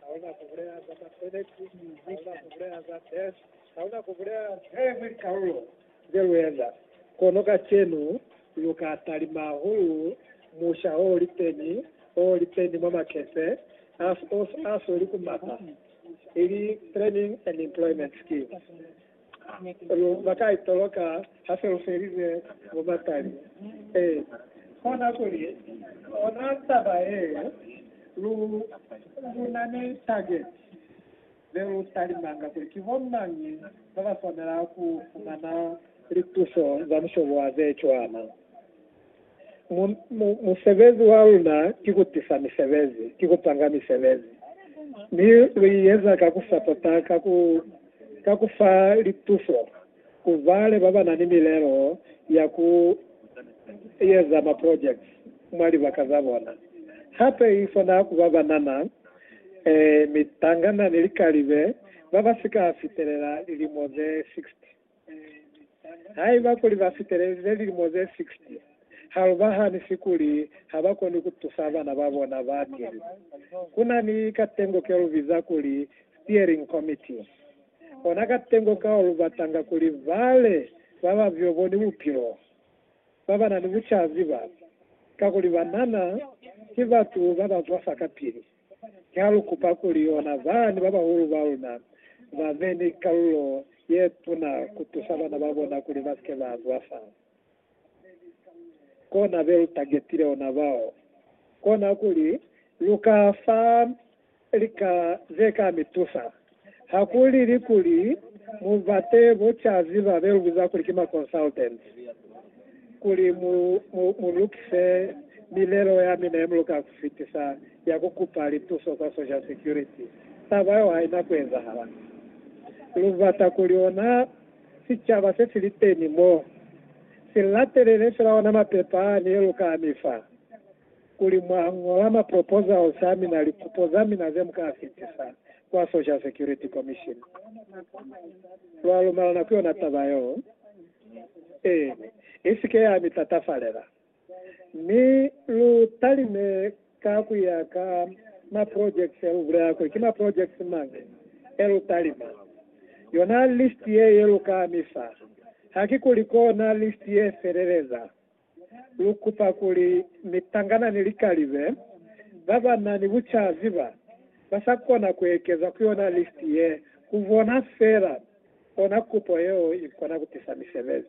Hauna kubulela za masebezi, hauna kubulela za death, hauna kubulela every kaulo ze lueza. Kono kacenu luka talima hahulu musha o liteni, o liteni mwa makese aso, aso li ku mapa, ili training and employment skills. Lu ba ka itoloka ha se lu felize bubatali. Ee, kona kuli ona taba yeo, lu, lu na ni targeti ze lu talimanga kuli ki bo mañi ba ba swanela ku fumana lituso za mushobo wa ze cwana. Mu, mu, musebezi wa luna ki ku tisa misebezi, ki ku panga misebezi. Mi lu i eza ka ku sapota, ka ku, ka ku fa lituso ku bale ba ba na ni milelo ya ku eza maprojects mwa libaka za bona. Hape i kona ku ba banana, eh, mitangana ni likalibe ba ba si ka fitelela lilimo ze 60. Haiba kuli ba fitelelize lilimo ze 60, ha lu ba hanisi kuli ha ba koni ku tusa bana ba bona ba tiile. Ku na ni katengo ke lu biza kuli Steering Committee. Ona katengo kao lu batanga kuli bale ba ba byo bo ni bupilo, ba ba na ni bucaziba, kakuli banana ki batu ba ba zwa fa kapili. Ha lu kupa kuli yona zani babahulu ba luna ba be ni kalulo ye tuna ku tusa bana ba bona kuli ba si ke ba zwa fa kona be lu tagetile ona bao, kona kuli lu ka fa lika ze ka mi tusa. Ha ku lili kuli mu bate bo cazi ba be lu biza kuli ki ma consultants kuli mu, mu, mu lukise milelo ya mina ye mu luka ku fitisa ya ku kupa lituso kwa Social Security, taba yeo ha i na ku ezahala. Lu bata kuli ona sicaba se si li teni mo, si latelele fela ona mapepa a ne lu ka mi fa. Kuli mwa ñola ma proposals a mina, lipupo za mina ze muka fitisa kwa Social Security Commission, lwa lumelana ku yona taba yeo, e isike ya mi tatafalela, mi lu talime ka ku ya ka ma projects e lu bulela kuli ki ma projects mañi e lu talima. Yona list ye, ye lu ka mi fa, hakikuli kona list ye feleleza. Lu kupa kuli mitangana ni likalibe ba ba na ni bucazi ba ba sa kona ku ekeza ku yona listi ye, ku bona fela ona kupo yeo i kona ku tisa misebezi.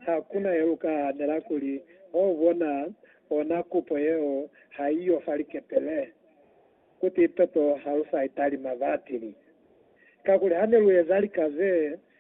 Ha ku na ye lu ka hanela kuli ho bona ona kupo yeo ha i yo fa likepele, kuti toto ha lu sa italima batili. Kakuli ha ne lu eza lika ze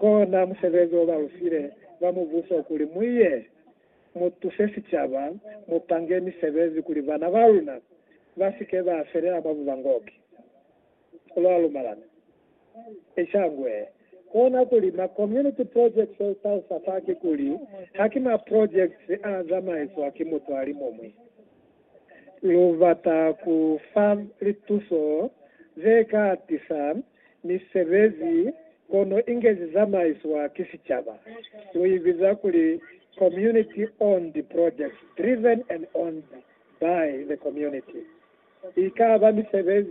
Kona musebezi o ba lu file ba Mubuso kuli mu ye mu tuse sicaba, mu pange misebezi kuli bana ba luna ba si ke ba felela mwa bubangoki. Lwa lumalana? Eca ngwe. Kona kuli ma community projects o tausa fa ki kuli ha ki ma projects a zamaiswa ki mutu a li mumwi. Lu bata ku fa lituso ze ka tisa misebezi kono ingezi zamaiswa ki sicaba. Lu i biza kuli community owned projects driven and owned by the community. Ikaba misebezi